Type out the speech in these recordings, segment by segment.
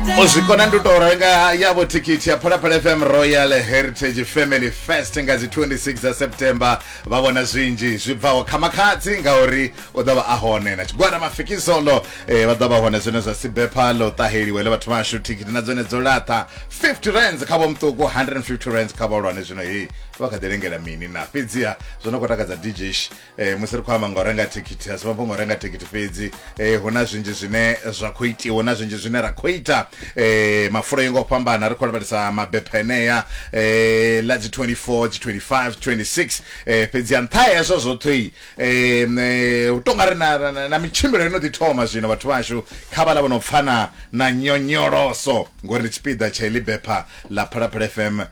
u zwi kona ndi u tou renga yavho thikhithi ya phalaphala fm royal heritage family fest nga dzi 26 dza september vha vhona zwinzhi zwi bvaho kha makhadzi ngauri u ḓo vha a hone na tshigwada mafikizolo eh, vha ḓo vha hone zwine zwa sibepha ḽo ṱaheliwe ḽe vhathu vhashu thikhithi na dzone dzo laṱa 50 rands kha vhomṱuku 150 rands kha vhahulwane zwino heyi vha kha ḓi lengela mini na fhedziha zwo no khou takadza dj e, musi ri khou amba nga u renga thikhithi asi mafhungo renga thikhithi fhedzi e, hu na zwinzhi zwine zwa khou itiwa na zwinzhi zwine ra khou ita e, mafulo yo ngo fhambana ri khou lavhelesa mabepha enea e, la dzi 24 dzi 25 26 e, fhedzi ya nṱha hezwo zwoṱhe e, u tonga ri na, na, na mitshimbilo ino ḓi thoma zwino vhathu vhashu kha vhala vho no pfana na nyonyoloso ngori ndi tshipiḓa tsha iḽi bepha ḽa phalaphala fm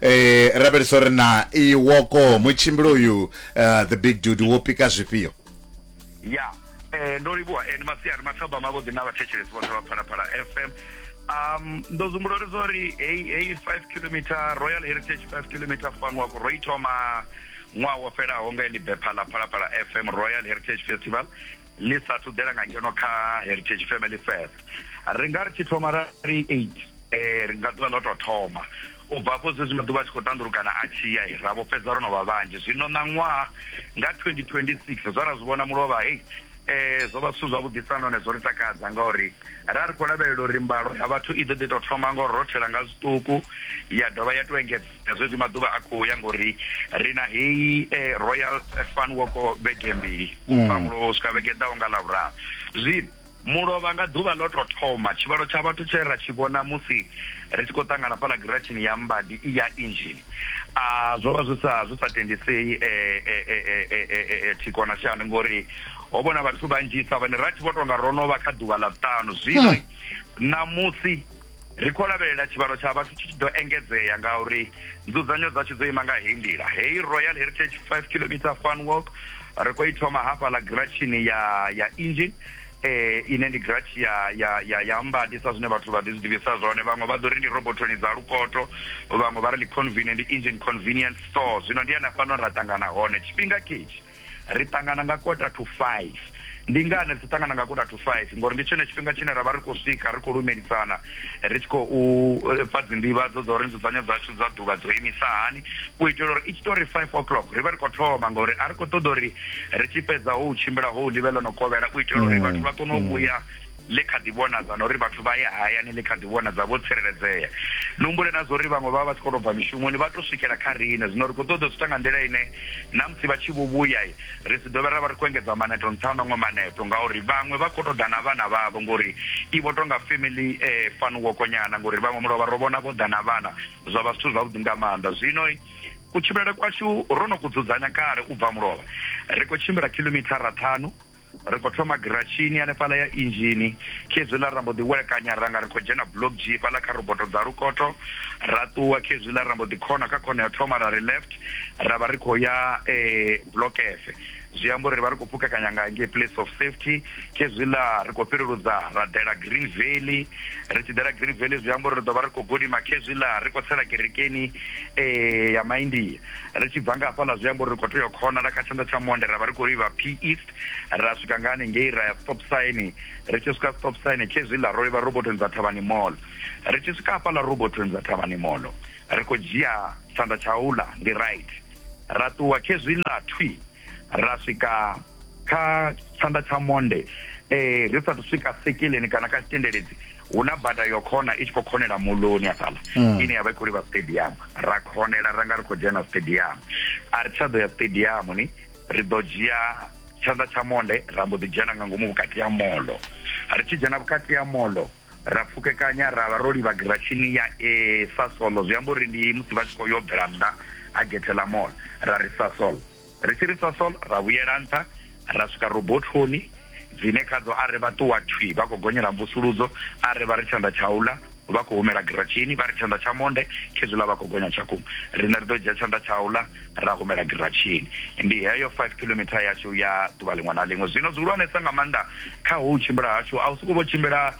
eh rabelisa uri na iwoko mutshimbili uyu eh, the big dude wo pika zwifhio ya eh, ndo livhuwa eh, ni masiari mathaba mavhuḓi na vhathetshelesi vhoṱhe vha phalaphala fm um ndo zumbula uri zori heyi heyi five kilometer royal heritage five kilometer fun wako ro i thoma ṅwaha wo fhelaho nga eḽi bepha ḽa phalaphala fm royal heritage festival ḽi sa thu ḓela nga ngeno kha heritage family fest ri nga ri tshi thoma ra ri eight eh, ri nga ḓuvha ḽo tou thoma u bva afho zwezwi maḓuvha a tshi khou tandulukana a tshi ya ra vho fhedza ro no vha vhanzhi zwino ṋaṅwaha nga 2026 zwa ra zwi vhona mulovha hei eh zwo vha zwithu zwavhuḓisa nahone zwo ri takadza ngauri ra ri khou lavhelela uri mbalo ya vhathu i ḓo ḓi tou thoma ngo rothela nga zwiṱuku ya dovha ya tou engedza zwezwi maḓuvha a khou ya ngori ri na heyi eh, royal fan woko vhege mbili ubva mm. mulovha u swika vhege ḓaho nga lavhuraru zwino mulovha nga ḓuvha ḽo to thoma tshivhalo tsha vhathu tshe ra tshi vhona musi ri tshi khou ṱangana fhala giratshini ya mbadi i ya injini a zwo vha zwi sa zwi sa tendisei eh, eh, eh, thiko na shani ngori ho vhona vhathu vhanzhisa vhane ra tshi vho tonga ro no vha kha ḓuvha ḽa vhuṱanu zwino hmm. ṋamusi Ri khou lavhelela tshivhalo tsha vhathu tshi tshi ḓo engedzea ngauri nzudzanyo dzashu dzo ima nga heyi nḓila. Heyi Royal Heritage 5 kilometre fun walk ri khou i thoma hafhaḽa giratshini ya ya engine eh ine ndi giratshi ya ya ya ya mbadi sa zwine vhathu vha ḓi zwi ḓivhisa zwone vhaṅwe vha ḓo ri ndi robothoni dza lukoto vhaṅwe vha ri ndi convenient engine convenience store zwino ndi hana fhano ra ṱangana hone tshifhinga ketshi Ri ṱangana nga kota to five. Ndi ngani ri tshi ṱangana nga kota to five? Ngori ndi tshone tshifhinga tshine ra vha ri khou swika ri khou lumelisana, ri tshi khou fha dzinḓivhadzo dza uri nzudzanyo dzashu dza ḓuvha dzo imisa hani, u itela uri i tshi tou ri five o'clock ri vhe ri khou thoma ngori a ri khou ṱoḓa uri ri tshi fhedza hou tshimbila hou ḽi vhe ḽo no kovhela u itela uri vhathu vha kone u vhuya ḽi kha ḓi vhonadza na uri vhathu vha ye hayani ḽi kha ḓi vhonadza vho tsireledzea. Ni humbule na zwa uri vhaṅwe vha vha vha tshi khou tou bva mishumoni vha tou swikela kha riṋe. Zwino ri khou ṱoḓa u zwi ita nga nḓila ine na musi vha tshi vho vhuya, ri si dovhe ra vha ri khou engedza maneto nṱha ha maṅwe maneto ngauri vhaṅwe vha khou tou ḓa na vhana vhavho ngori i vho tou nga family fun walk nyana ngori vhaṅwe mulovha ro vhona vho ḓa na vhana zwa vha zwithu zwavhuḓi nga maanḓa. Zwino kutshimbilele kwashu ro no ku dzudzanya kale u bva mulovha, ri khou tshimbila khilomithara ṱhanu. Ri khou thoma giratshini hanefhaḽa ya inzhini. Khezwiḽa ra mbo ḓi welekanya ra nga ri khou dzhena Block G fhaḽa kha roboto dza lukoto. Ra ṱuwa khezwiḽa ra mbo ḓi khona kha khona ya u thoma ra ri left ra vha ri khou ya Block F. Zwi amba uri ri vha ri khou pfukekanya nga ngei Place of Safety. Khezwiḽa ri khou fhireludza ra ḓela Green Valley. Ri tshi ḓela Green Valley zwi amba uri ri ḓo vha ri khou gidima khezwiḽa ri khou tsela kerekeni ya Maindia. ri tshi bva nga hafhaḽa zwi amba uri ri khou tea u khonala kha tshanḓa tsha monde ra vha ri khou livha p east ra swika nga hanengei ra ya stop sign ri tshi swika stop sign khezwiḽa ro livha robotoni dza thavhani mall ri tshi swika hafhaḽa robotoni dza thavhani mall ri khou dzhia tshanḓa tsha uḽa ndi right ra ṱuwa khezwiḽa thwi ra swika kha tshanḓa tsha monde um ri sathu swika sekileni kana kha tshitendeledzi Hu na bada yo khona i tshi khou khonela moḽoni hafhaḽa ine ya vha i khou livha stadium. Ra khonela ra nga ri khou dzhena stadium. A ri tsha ḓo ya stadium ni, ri ḓo dzhia tshanḓa tsha monde ra mbo ḓi dzhena nga ngomu vhukati ha moḽo. Ri tshi dzhena vhukati ha moḽo ra pfukekanya ra vha ro livha giratshini ya A Sasol. Zwi amba uri ndi musi vha tshi khou yo bvela nnḓa ha gethe ḽa moḽo ra ri Sasol. Ri tshi ri sosol, ra vhuyela nṱha ra swika robothoni dzine khadzo a ri vha ṱuwa thwi vha khou gonyela mvusuludzo, a ri vha ri tshanḓa tsha u ḽa vha khou humela giratshini, vha ri tshanḓa tsha monde khezwiḽa vha khou gonya tshakhuma. Riṋe ri ḓo dzhia tshanḓa tsha u ḽa ra humela giratshini. Ndi heyo five kilometer yashu ya ḓuvha ḽiṅwe na ḽiṅwe. Zwino zwihulwanesa nga maanḓa kha hou tshimbila hashu a hu sokou vho tshimbila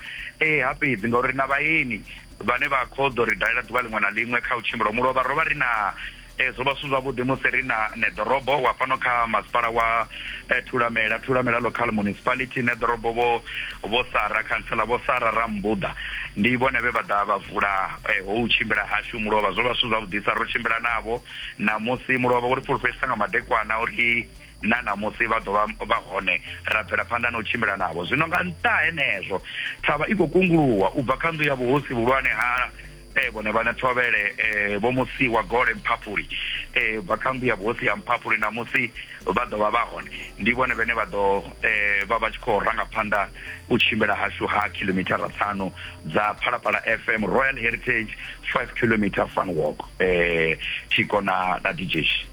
ha fhedzi ngauri ri na vhaeni vhane vha khou ḓo ri dalela ḓuvha ḽiṅwe na ḽiṅwe kha u tshimbila ho mu lovha ro vha ri na Ee, zwo vha zwi si zwavhuḓi musi ri na Neḓorobo wa fhano kha masipala wa eh, Thulamela, Thulamela Local Municipality, Neḓorobo vho vho Sara, khantsela vho Sara Rambuḓa. Ndi vhone vhe vha ḓa vha vula eh, hou tshimbila hashu mulovha. Zwo vha zwi si zwavhuḓisa, ro tshimbila navho ṋamusi mulovha wo ri fulufhedzisa nga madekwana uri na ṋamusi vha ḓo vha vha hone, ra bvela phanḓa na u tshimbila navho. Zwino nga nṱha ha henezwo, thavha i khou kunguluwa u bva kha nnḓu ya vhuhosi vhuhulwane ha Eh, vhone vhane thovhele eh, vho musi wa gole mphaphuli eh, bva kha mbuya vhosi ya mphaphuli na musi vha ḓo vha vha hone ndi vhone vhane vha ḓo eh, vha vha tshi khou ranga phanḓa u tshimbila hashu ha khilomithara ṱhanu dza phalaphala fm royal heritage 5 kilometer fun walk eh, tshiko na, na dj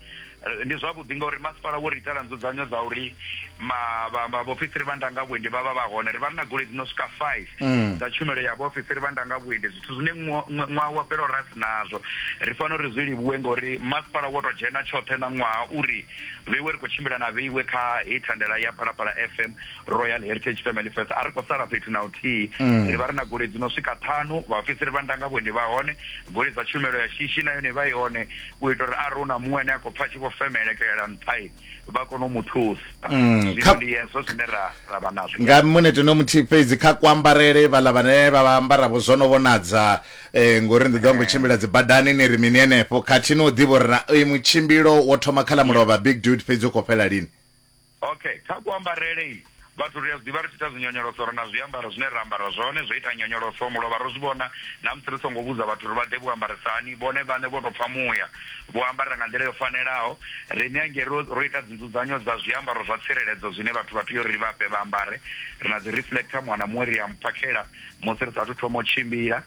Eh, ndi zwavhuḓi ngauri masipala wo ri itela nzudzanyo dza uri vhaofisiri vha ndanga vhuendi vha vha vha hone ri vha ri na goloi dzi no swika five mm. dza tshumelo ya vhaofisiri vha ndanga vhuendi zwithu zwine ṅwaha wa fhelo ra si nazwo ri fanela uri zwi livhuwe ngauri masipala wo tou dzhena tshoṱhe na ṅwaha uri vheiwe ri khou tshimbila na vheiwe kha heyi thandela ya phalaphala fm royal heritage family fest a ri khou sala fhethu na uthihi mm. ri vha ri na goloi dzi no swika ṱhanu vhaofisiri vha ndanga vhuendi vha hone goloi dza tshumelo ya shishi na yone vha i hone u ita uri arali hu na muṅwe ane a khou pfa tshi vho femelekelela nṱhai vha kone u mu thusa mm, zwino ndi hezwo zwine ra ra vha nazwo nga munete no muthihi fhedzi kha kuambarele vhaḽa vhane vha vha ambaravho zwo no vhonadza eh, ngori ndi ḓo ngo tshimbila dzi badani ni ri mini henefho khathihi no ḓivha uri na eh, mutshimbilo wo thoma kha ḽa mulovha big dude fhedzi u khou fhela lini Okay, kha kuambarele i vhathu ri a zwiḓivha ri tshi ita dzinyonyoloso ri na zwiambaro zwine ra ambara zwone zwo ita nyonyoloso mulovha ro zwi vhona na musi ri songo vhudza vhathu ri vha ḓe vho ambarisa hani vhone vhaṋe vho tou pfha muya vho ambara nga nḓila yo fanelaho riṋe hangei ro ro ita dzinzudzanyo dza zwiambaro zwa tsireledzo zwine vhathu vha tea uri ri vha fhe vha ambare ri na dzi reflector muṅwe na muṅwe ri a mphakhela musi ri saathu thoma u tshimbila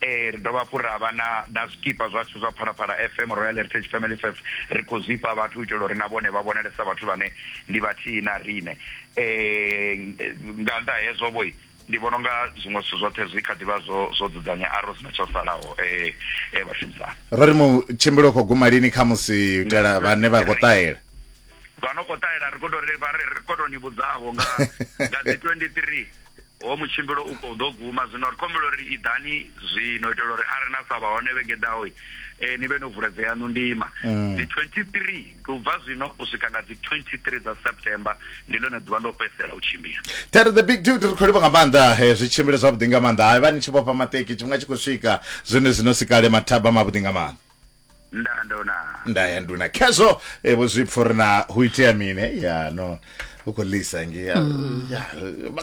ee ri dovha hafhu ra vha na na zwikipa zwashu zwa phalaphala fm royal heritage family fest ri khou zwifha vhathu u itela uri na vhone vha vhonalesa vhathu vhane ndi vhathihi na rine um nga nnḓa hezwo vho ndi vhona unga zwiṅwe zwithu zwoṱhe zwi kha ḓivha zwo zwo dzudzanya aro sina tsho salaho um e vhashumisani ro ri mu tshimbilo khou guma lini kha musi u itela vhane vha khou ṱahela vha no khou ṱahela ri khou tou ri vha ri khou tou ni vhudzavho nga nga dzi 23 Hoyo mutshimbilo u khou ḓo guma zwino. Ri khou humbela uri iḓani zwino u itela uri arali na sa vha hone vhege i ḓaho eh, ni vhe no vula dze yaṋu ndima. Mm. Dzi 23 ndi u bva zwino u swika nga dzi 23 dza September ndi ḽone ḓuvha ndo fhedzisela u tshimbila. Ṱhari the big dude ri khou livha nga maanḓa eh, zwi tshimbile zwavhuḓi nga maanḓa. Hai vha ni tshi vhofha maṱeki tshifhinga tshi khou swika zwone zwino si kale mathaba mavhuḓi nga maanḓa. ndandona nda ya nduna khezwo eh, vho zwi pfha uri na hu itea mini Eh, ya no u khou lisa nge ya ya,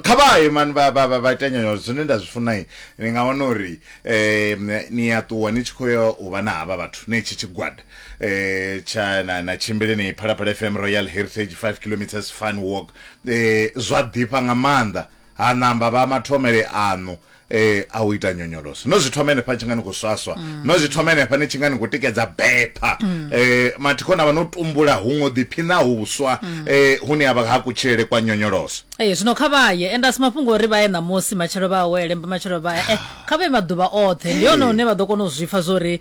kha vhaye mani vha vha- vha- vha ita nyonyoloso zwine nda zwi funai ni nga wana uri em, ni a ṱuwa ni tshi khou ya u vha na havha vhathu ne tshi tshigwada eh, tsha na na tshimbile ni phalaphala fm royal heritage 5 kilometres fun walk eh, zwa ḓifha nga maanḓa Ha namba vha mathomele aṋu e, a u ita nyonyoloso. No zwi thoma henefha ni tshi nga ni khou swaswa. No zwi thoma henefha ni tshi nga ni khou tikedza bepha. E, mathikho na vha no tumbula huṅwe u ḓiphina huswa e, hune ha vha ha kutshilele kwa nyonyoloso. Ee, zwino kha vha ye. Ende a si mafhungo a uri vha ye ṋamusi, matshelo vha awele, mbamatshelo vha e. Kha vha ye maḓuvha oṱhe. Ndi hone hune vha ḓo kona u zwi pfa zwa uri.